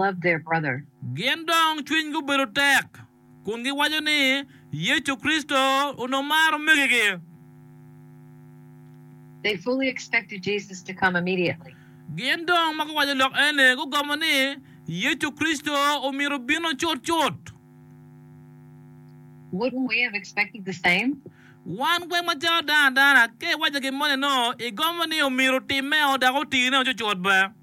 loved their brother. Gin dong cwinygi obedo tek kun giwaco ni Yecu Kricito onongo maro omegigi. They fully expected Jesus to come immediately. Gin dong ma guwaco lok eni gugomo ni Yecu Kricito omyero bino cut cut. Wouldn't we have expected the same? Wan weng macalo dano adana, ka iwaco gin moni-no, igomo ni omyero otimme-o dok otine-o cut cut be.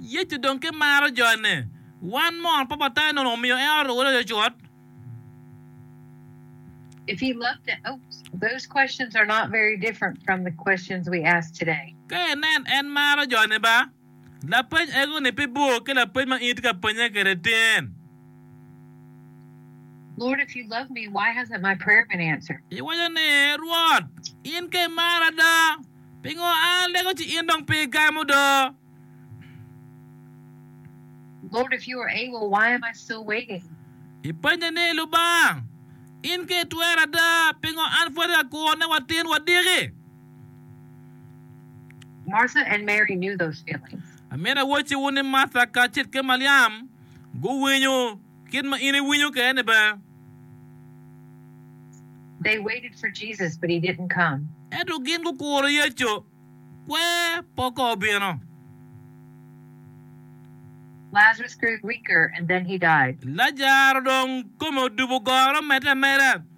Yecu dong ki maro jone. Wan mot pa Patanne onongo omiyo en oruko loyo cut. Ka inen en maro jone ba. Lapeny ego-ni pe bor ki lapeny ma in itye ka pennye kwede tin. Lord, if you love me, why hasn't my prayer been answered? Iwaco ni, Rwot, in ka imara do, pingo an alego ci in dong pe igamo do? Lord, if you are able, why am I still waiting? Ipenye ni, Lubanga, in ka itwera do, pingo an pwod ka kuro ne watin wadiki? Amito awocciwu ni Martha kacel ki Maliam guwinyo kit ma in iwinyo kwede-ni bene. Ento gin gukuro Yecu, kwer pe okobo bino. Lajaro dong kome odubo goro, omedde ameda.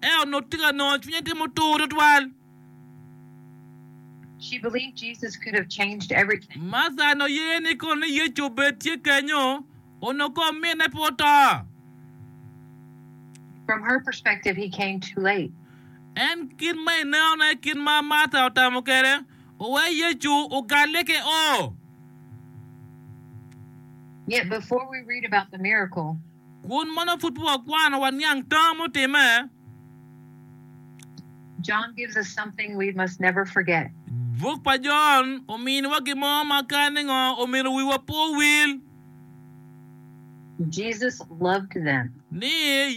Ento onongo tika nongo cwinye tye mutur twatwal? Martha onongo ye ni kono ni Yecu obed tye kenyo onongo ka ominne pe oto. En kit ma inenone kit ma Martha otamo kwede oweyo Yecu ogalle ki oo. Kun mono pud wakwano waniang tam mutimme? Buk pa Jon ominiwa gin mo ma kare ningo omyero wiwa pe owil? Ni,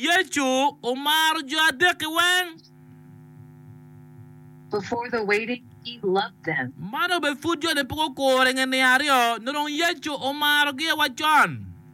Yecu omaro jo adek-ki weng. Man obedo pud jo-ni pe gukuro i nge niang aryo, nyo dong Yecu omarogi awacon.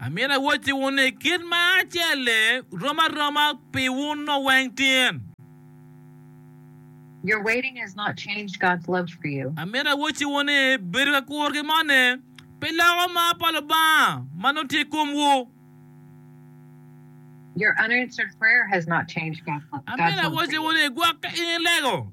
Amito awottiwu ni kit ma acel-li rom aroma pi wun nongo weng tin. Amito awottiwu ni bedo ka kuro ki moni pe loko mar pa Lubanga ma nongo tye i komwu. Amito awottiwu ni gwok ka in ilego.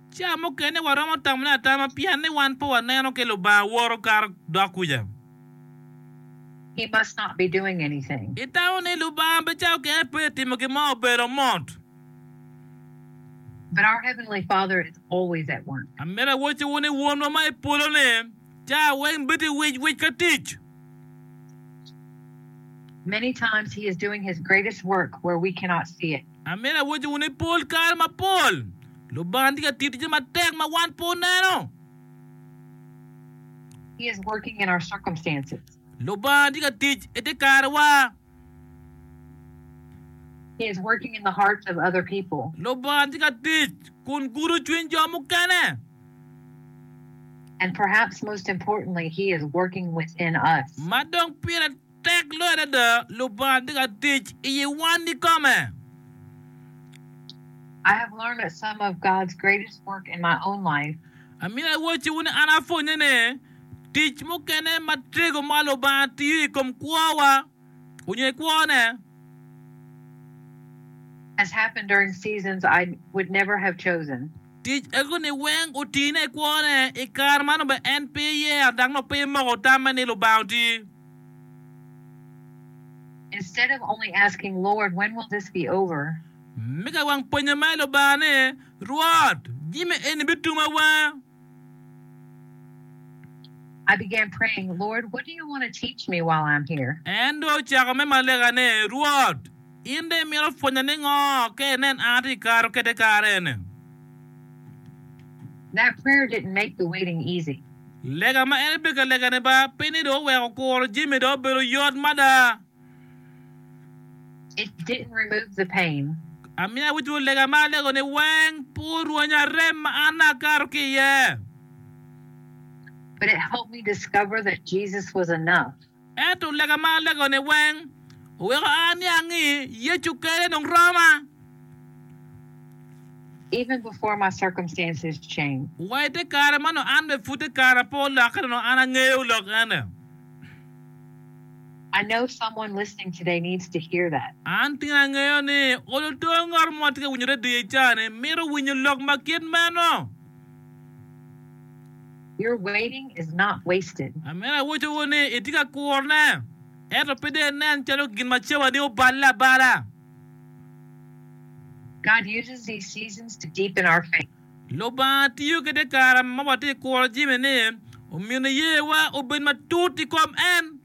Ca mukene waromo tamone atama pien ni wan pe waneno ki Lubanga woto kato dok kuca. He must not be doing anything. Itamo ni Lubanga pe cako kene pe timo gin mo obedo mot. But our heavenly Father is always at work. Amito awocciwu ni Wonwa ma i polo-ni ca weng bedi wic wic ka tic. Many times he is doing his greatest work where we cannot see it. Amyero awocciwu ni pol kare mapol Lubanga tye ka tiyo ticce matek ma wan pe oneno. Lubanga tye ka tic i te karewa. Lubanga tye ka tic kun gudo cwiny jo mukene. Ma dong pire. Tek loyo adada Lubanga tye ka tic i yi wan kikome. I have learned that some of God's greatest work in my own life. Amyero awoci wunu ni an apwonye ni tic mukene ma tego ma Lubanga tiyo i kom kwowa onyo i kwo ne. Has happened during seasons I would never have chosen. Tic ego ni weng otine i kwo ne i kare ma nongo bene en pe yero dok nongo pe moko tamme ni Lubanga oti. Me ka wang pwonye ma i Lubanga ni, Rwot, jami eni bituma wanga? En dong ocako me malaika ni, Rwot, in dong imito pwonya ningo ka inen an atye ka kato kede kare eni? Lega ma en ebeka legane ba, pe ni dong oweko kuro jami dong obedo yot mada. It didn't remove the pain. Amiyo awicwu lega ma alego-ni weng pe orwenya rem ma an akato ki iye. But it helped me discover that Jesus was enough. Ento lega ma alegoni weng oweko a ni angi Yecu kele dong roma. Even before my circumstances changed. Wa ite kare man nongo an bene pud kara pe olokke nongo an angeyo lok ene. I know someone listening today needs to hear that. An tin angeyo ni olo to ngat mo tye ka winyo radio icani mito winyo lok ma kit meno. Your waiting is not wasted. Amene awoco wunu ni itye ka kurone, ento pe dong inen calo gin ma cawani oballe abala. God uses these seasons to deepen our faith. Lubanga tiyo ki te kare ma watye ka kuro jami-ni omyeno iyewa obed matut i kom en.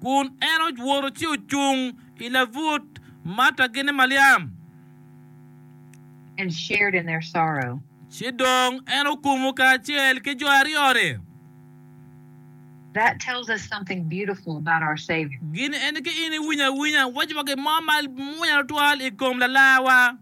Kun en owoto ci ocung i labut Marta gin ni Maliam. And shared in their sorrow. Ci dong en okumo kacel ki jo aryo-ni. That tells us something beautiful about our Savior. Gin eni ki in iwinyo awinya wacwa gin mo ma mwonya tutwal i kom Lalarwa.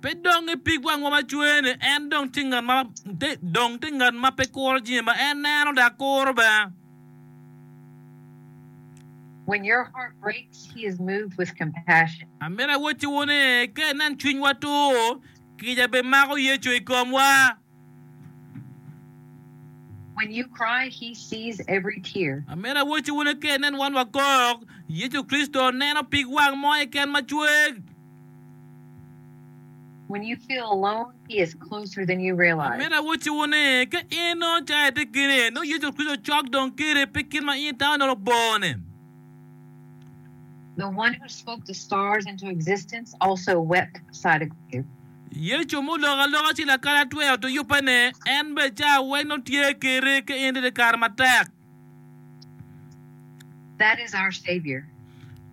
Pe dong i pigwa ma wacwene, en dong tye ngat ma dong tye ngat ma pe kuro jami ma en neno dok kuro bene. When your heart breaks, He is moved with compassion. Amito awocciwu ni, ka inen cwinywa tur, kica bimako Yecu i komwa. Amene awoco wunu ka inen wan wakok, Yecu Kricito neno pig wang mo eken macweg. Amene awoco wunu ni, ka in nongo cayi itye kini, nongo Yecu Kricito cok dong kiri pi kit ma in itamo ni labor ni. Yecu ma oloko aloka ci lakalatwe oto yubbene, en bene ca weny nongo tye keri ki in ite kare matek. That is our Savior.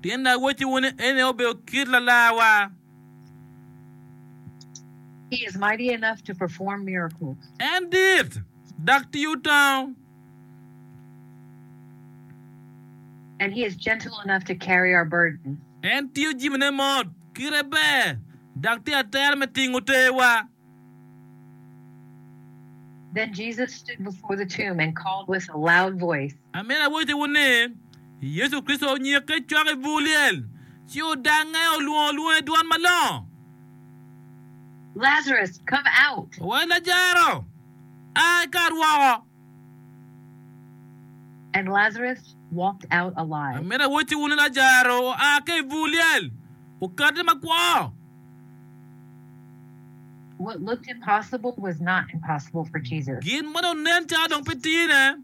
Tyen Lawotciwu ni en aye obedo kit Lalarwa. He is mighty enough to perform miracles. En dit, dok tiyo tango. And he is gentle enough to carry our burden. En tingo jimine mot, kite ber, dok tye atera me tingo teewa. Then Jesus stood before the tomb and called with a loud voice. Amyero awaciwu ni, Yecu Kricito onyikke i cwak i bur lyel, ci odangnge, olwongo lwonge i dwon malongo. Lazarus, come out! Wa, Lajaro! a i kar woko. And Lazarus walked out alive. Amito awocci wun ni Lajaro oa ka i bur lyel, okati makwo. What looked impossible was not impossible for Jesus. Gin ma dong nen calo dong pe tine.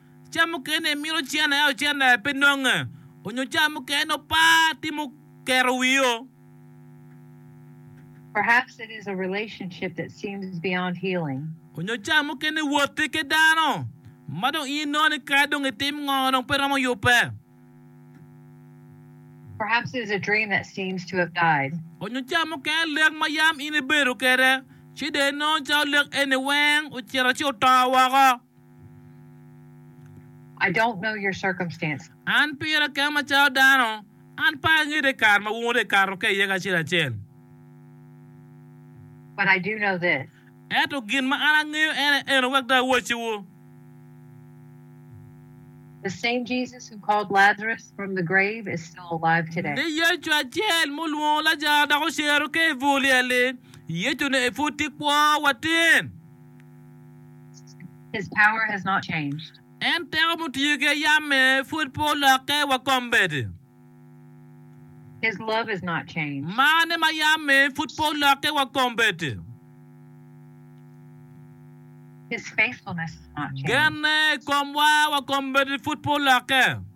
Ca mukene imito cen aye ocen aye pe nonge, onyo ca mukene opa timo keto wio. Perhaps it is a relationship that seems beyond healing. Onyo ca mukene iwote ke dano ma dong in inono ni kadi dong itim ngo dong pe romo yube. Perhaps it is a dream that seems to have died. Onyo ca mukene lek ma yam in ibedo kede ci dong inono calo lek eni weng ocito ci oto woko. An pira kema macalo dano, an pe angete kare ma wungu dong ekato ka iye kacel acel. Ento gin ma an angeyo ene eno, wek dong awacciwu, ni Yecu acel ma olwongo Lajaro dok ocero ki i bur lyel-li, Yecu-ni pud tye kwo watir. En teko mutye ki ayamme pwod pe olokke wa kombeddi. Marne ma ayamme pwod pe olokke wa kombeddi. Genne i komwa wa kombeddi pwod pe olokke.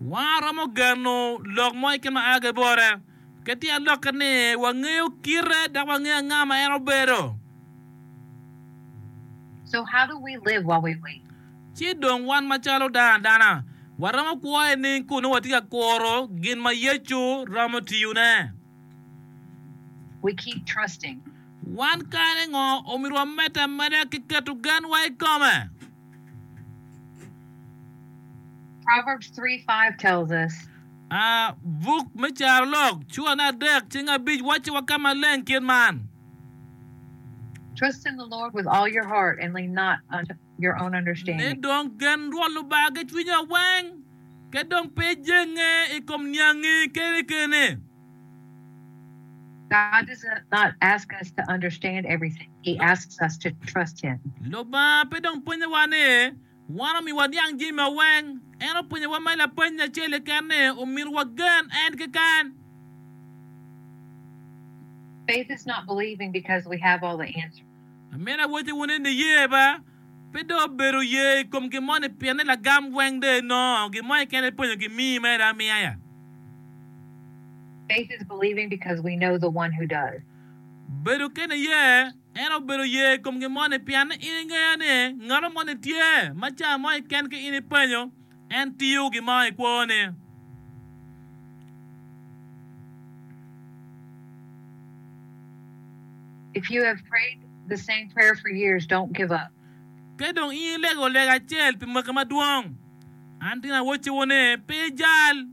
Waromo geno lok mo keken ma a ki i bote. Kit tye alokke ni wangeyo kite dok wangeyo anga ma en obedo. Ci dong wan macalo dano adana, waromo kwo i nining kun nongo watye ka kuro gin ma Yecu romo tiyone? Wan kare ngo omyero wamed ameda ki keto genwa i kome? A Buk me Carolok cura adek cing abic wacci wa ka maleng kit man. Ne dong gen Rwot Lubanga ki cwinyi aweng, ka dong pe ijenge i kom niangi kene kene. Lubanga pe dong pwonyowa ni wan omiwa niang jami ma weng, en opwonyowa ma lapeny acel keken ni omyero wagen en keken. Amina woti wunu ni niye ba, pe dong obedo ye i kom gin mo ni pienne lagam weng dong inongo gin mo keken ipenyo ki mii mere amiya ya. Faith is believing because we know the one who does. Bedo kene iye, en obedo ye i kom gin mo ni pienne in ingeyo ni ngato mo ni tye ma ca mo keken ki in ipenyo En tiyo gi maa i kwone. If you have prayed the same prayer for years, don't give up. Ka dong in ilego lega acel pi mwaki madwong, an tye nawocci wunu ni, pe ijal.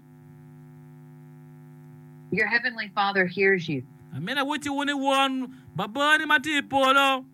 Your heavenly Father hears you. Amito awocci wunu ni Won Babani ma tye i polo.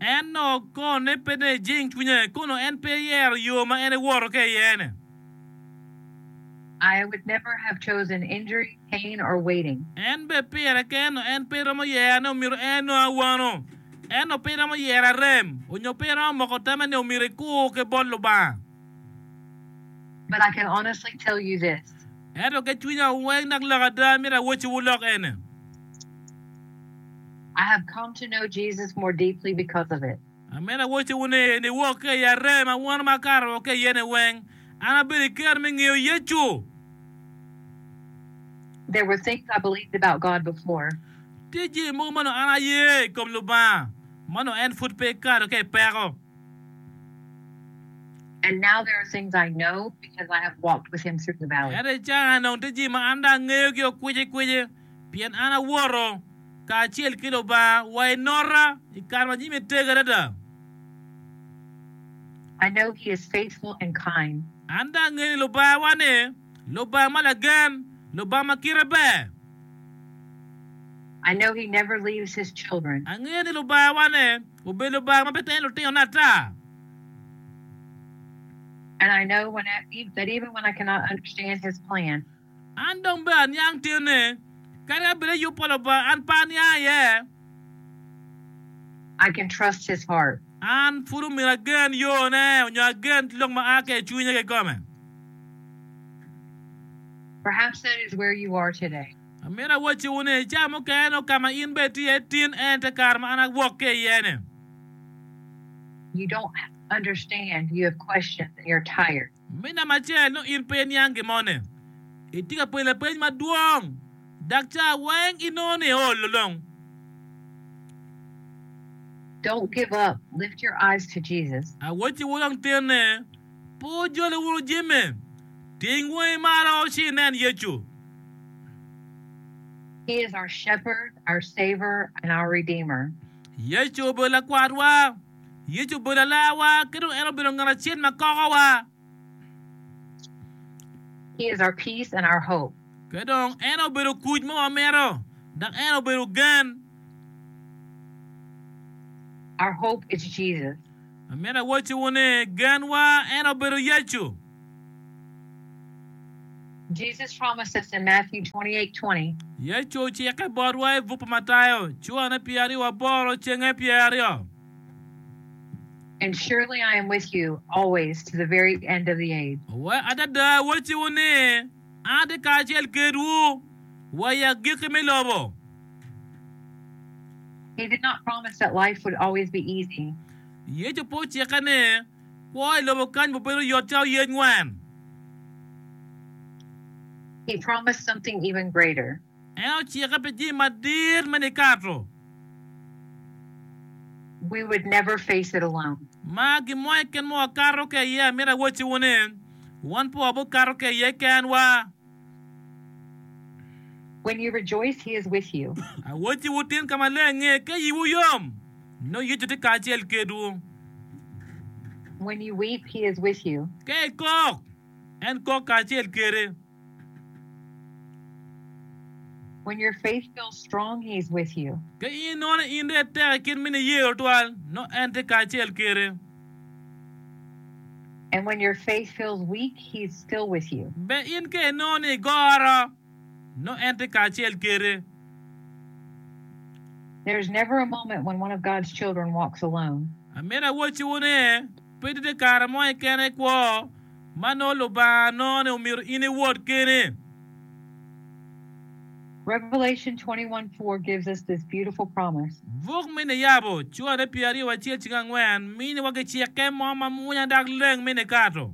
En nok konne pe dong ejing cwinye, kono en pe eyero yo ma en ewoto ka iyene. I would never have chosen injury, pain, or waiting. En be pire keno en pe romo yero ni omito en nongo awano. Ento pe iromo yero arem, onyo pe iromo moko tama ni omito ikur ki bot Lubanga. But I can honestly tell you this. Ento ki cwinya weng dok lok ada, amito awocciwu lok eni. I have come to know Jesus more deeply because of it. Ameno awoco wu ni, niwok ka i aree ma wun makato ka iye-ni weng, an abedo i kero me ngeyo Yecu. There were things I believed about God before. Tye jami mogo ma nongo an aye i kom Lubanga, ma nongo en pud pe ekato ka i peko. And now there are things I know because I have walked with Him through the valley. Ento i can-na dong tye jami ma an dong angeyogi okwicikwici. pien an awoto kacel ki Lubanga wa i nota i kare ma jami tego adada. I know he is faithful and kind. An dong angeyo ni Lubanga-wa-ni Lubanga ma lagen, Lubanga ma kite ber. I know he never leaves his children. Angeyo ni Lubanga-wa-ni obedo Lubanga ma pe teno lutinone ata. And I know that even when I cannot understand his plan. An dong bed aniang tinne, kadi abed i yub pa Lubanga, an pe aniang iye. I can trust his heart. An pud omyero agen yone, nyo agen lok ma a ki i cwinye kikome. Perhaps that is where you are today. Amito awacciwu ni, cawa mukene nongo ka ma in bene itye iye tin en te kare ma an awok ki iye-ni. You don't understand, you have questions, and you're tired. Me namba acel, nongo in pe iniang gin mo ne. Itye ka penyo lapeny madwong, dak ca weng inongo ni iolo long. Don't give up, lift your eyes to Jesus. Awacci wu dong tene, pe wujole wunu jami, ting wangi malo ci inen Yecu. He is our Shepherd, our Saver, and our Redeemer. Yecu obedo Lakwatwa. Yecu obedo Alarwa ki dong en obedo ngat acel ma kokowa. He is our peace and our hope. Ki dong en obedo kuc ma wamito dok en obedo gen. Our hope is Jesus. Amito awacciwu ni genwa en obedo Yecu. Yecu ocikke botwa i buk pa Matayo, curane pye aryo wa boro, cenge pye aryo. Adada awacciwu ni, atye kacel kedwu wa i agikki me lobo. Yecu pe ocikke ni. Kwo i lobo kany mubedo yot calo yec ngwen. He promised something even greater. En ocikke pi jami madit me nikato. We would never face it alone. Ma gin mo keken ma wakato ka iye. Amito awocciwu ni, wan pe wabikato ka iye kenwa. When you rejoice, he is with you. Awotyi wutyen ka malenge ka yiwu yom, nongo Yecu tye kacel kedwu. When you weep, he is with you. Ka ikok, en kok kacel kede. When your faith feels strong, he is with you. Ka inongo ni in dong itek i kit mini yer otwal, nongo en tye kacel kede. And when your faith feels weak, He's still with you. Be in ka inongo ni igoro, nongo En tye kacel kede. There is never a moment when one of God's children walks alone. Amito awocciwu ni, pe tye kare mo keken i kwo ma nongo Lubanga nongo ni omito in iwot keni. Revelation 21 4 gives us this beautiful promise. Buk me Niyabo, cware pye aryo wa cel cik angwen, miniwa ki cikke mo ma mwonya dok leng me nikato.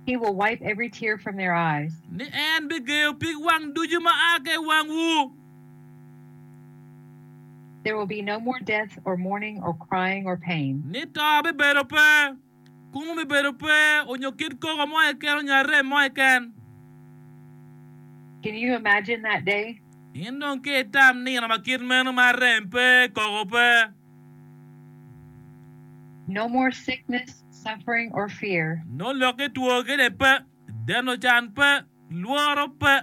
He will wipe every tear from their eyes. Ni en bigeyo pig wang ducu ma a ka i wangwu. There will be no more death or mourning or crying or pain. Ni to bibedo pe. Kungu bibedo pe onyo kit koko mo keken onyo arem mo keken. Can you imagine that day? In dong ki itam nino ma kit meno ma arem pe, koko pe. No more sickness, suffering or fear. Nongo lok ki two kede pe. Deno can pe, lworo pe.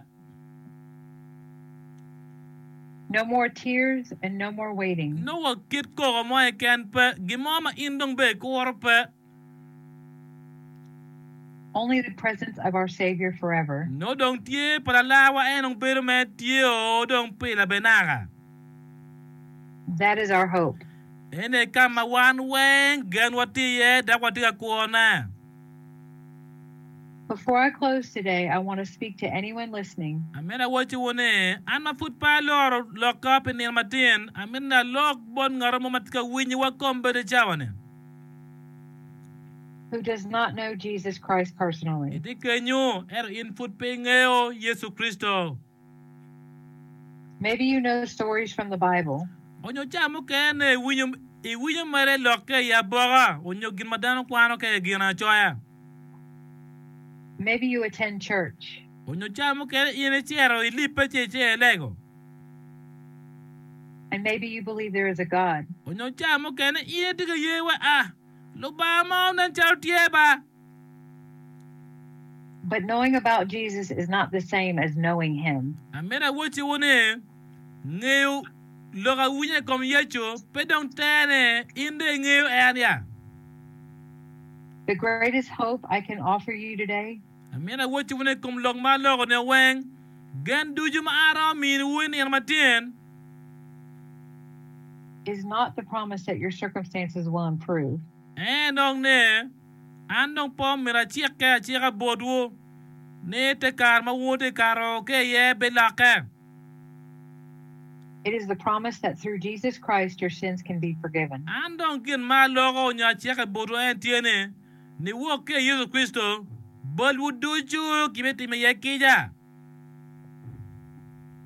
No more tears and no more waiting. Nongo kit koko mo keken pe, gin mo ma in dong bene ikuro pe. Only the presence of our Savior forever. Nongo dong tye pa Lalarwa en dong bedo me tye o dong pile bene naka. That is our hope. En aye ka ma wan weng genwa tye iye dok watye ka kwone. Before I close today, I want to speak to anyone listening. Amito awaciwu ni, an ma pud pe aloro lokka pi nino matin, amito ni alok bot ngat mo ma tye ka winyo wa kom bene i cawa-ni. Who does not know Jesus Christ personally. Itye kenyu, ento in pud pe ingeyo Yecu Kricito. Maybe you know stories from the Bible. Onyo ca mukene i winyo mere lokke i aboka onyo gin ma dano kwano ka i gin acoya. Maybe you attend church. Onyo ca mukene in i cito i libbe ci ice i lego. And maybe you believe there is a God. Onyo ca mukene in itye ka ye wa a Lubanga mo nen calo tye ba. But knowing about Jesus is not the same as knowing him. Amito awocciwu ni, ngeyo lok awinyo i kom Yecu pe dong terne, in dong ingeyo en ya? The greatest hope I can offer you today. Amito awocciwu ni i kom lok ma aloko nio weng, gen ducu ma an aromo miniwu i nino matyen, is not the promise that your circumstances will improve. Ee dong ne, an dong pe omyero acikke acika botwu ni te kare ma wun wutye ka ro ki iye bilokke. An dong gin ma aloko nyo acike botwu en tye ni, niwok ki i Yecu Kricito, balwu ducu gibitimo iye kica.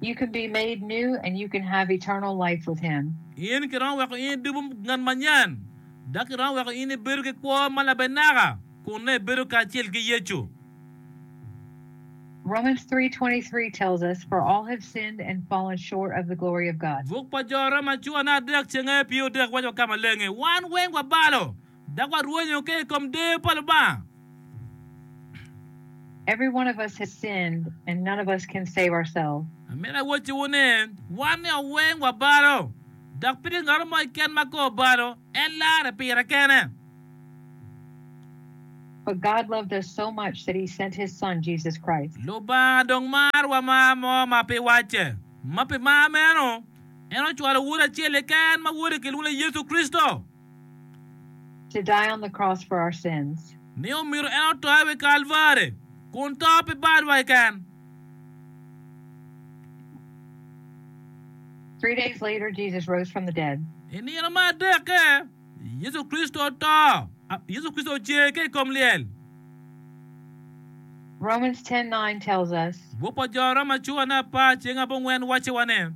You can be made new and you can have eternal life with him. In kiromo weko in idubu ngat manyen, dok kiromo weko in ibedo ki kwo ma labenaka kun nongo ibedo kacel ki Yecu. Romans 3:23 tells us, For all have sinned and fallen short of the glory of God. Buk pa Jo Roma cura nongo adek cenge pye odek waco ka maleng ni, Wan weng wabalo. Dok warwenyo ke i kom deyo pa Lubanga. Every one of us has sinned and none of us can save ourselves. Amito awocciwu ni, wan nio weng wabalo, dok pe tye ngat mo keken ma ka obalo, en larre pire kene. But God loved us so much that He sent His Son, Jesus Christ. Lubanga dong marowa mar mo ma pe wacce. Ma pi mar meno, en ocwalo Wode acel keken ma Wode kilwongo ni Yecu Kricito. to die on the cross for our sins. Ni omito en oto i wi Kalvari kun to pi balwa keken. Three days later Jesus rose from the dead. I nino me adekke, Yecu Kricito oto, Yecu Kricito ocer ki i kom lyel. Romans 10:9 tells us. Buk pa Jo Roma cura ne apar ceng abongwen wacciwa ni.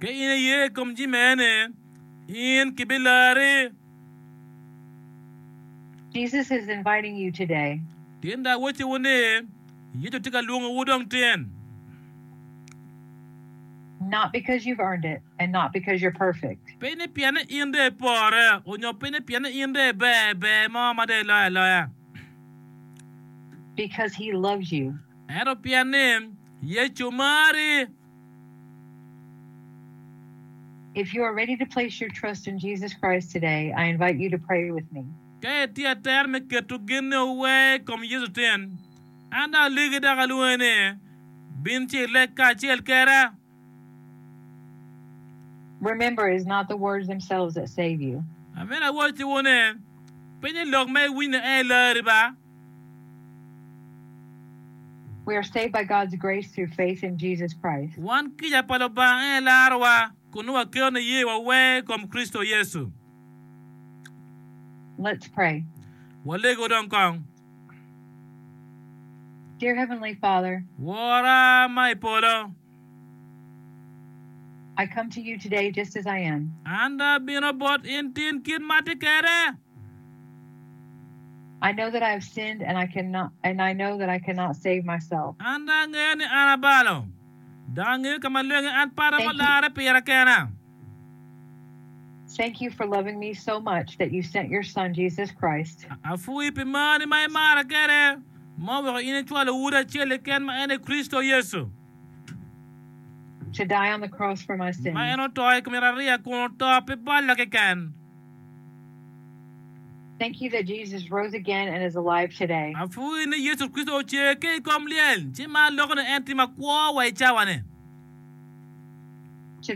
Ka in iye i kom jami mene, in kibilarri. Jesus is inviting you today. Tinda awacciwu ni, Yecu tye ka lwongowu dong tin. Not because you've earned it and not because you're perfect. Pe ni pien ni in dong ipore onyo pe ni pien ni in dong iber ber mo ma dong iloyo aloya. Because he loves you. Ento pien ni Yecu marri. If you are ready to place your trust in Jesus Christ today, I invite you to pray with me. Ka itye ater me keto gennewu wee i kom Yecu tin, an dong alegi dok alwongi ni, Bin ci ileg kacel keda. Remember, it is not the words themselves that save you. Amyero awaciwu ni, piny i lok ma iwinyo ni en ilarri ba. Wan kica pa Lubanga en aye larowa, kun nongo waketo niye wa wer i kom Kricito Yecu. Walego dong kong. Wora ma i polo. An dong abino bot in tin kit ma atye kwede. An dong angeyo ni an abalo, dok angeyo ka ma lwenge an pata ma olarre pira kena. Thank you for loving me so much that you sent your son Jesus Christ. Apwoyi pi marni ma imara kwede ma oweko in icwalo Wodi acel keken ma en aye Kricito Yecu. To die on the cross for my sins. Ma en oto i kom yatariya kun oto pi balla keken. Thank you that Jesus rose again and is alive today. Apwoyi ni Yecu Kricito ocer ki i kom lyel ci mar loko ni en tye makwo wa i cawa ni. An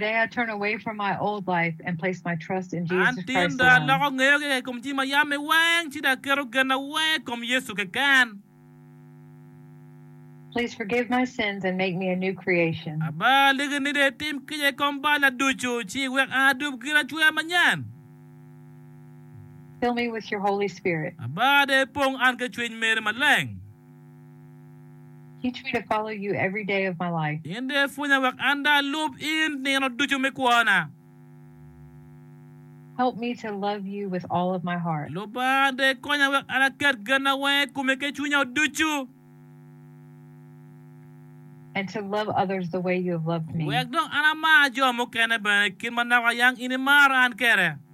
tinda aloko ngeyo kika i kom jami ma yam me weng, ci dong aketo genna weng i kom Yecu keken. Aba aliki ni dong itim kica i kom balla ducu, ci iwek an adub giracwer manyen. Aba dong ipong an ki Cwiny meri Maleng. Teach me to follow you every day of my life. In dong ipwonya wek an dong alub in nino ducu me kwona. Help me to love you with all of my heart. Lubanga dong ikonya wek an aket genna weng i komi ki cwinya ducu. And to love others the way you have loved me. Wek dong an amar jo mukene bene i kit ma naka yang in imara an kede.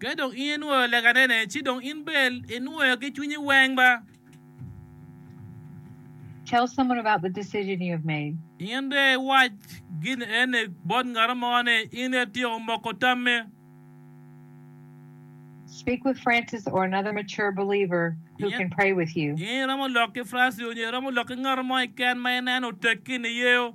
Ka dong in inwoyo leganene, ci dong in bene inwoyo ki cwinyi weng ba. In dong iwac gin eni bot ngat mo ni in ityeko moko tammi. In iromo lok ki Francis onyo iromo lok ki ngat mo keken ma ineno oteggi niyeyo.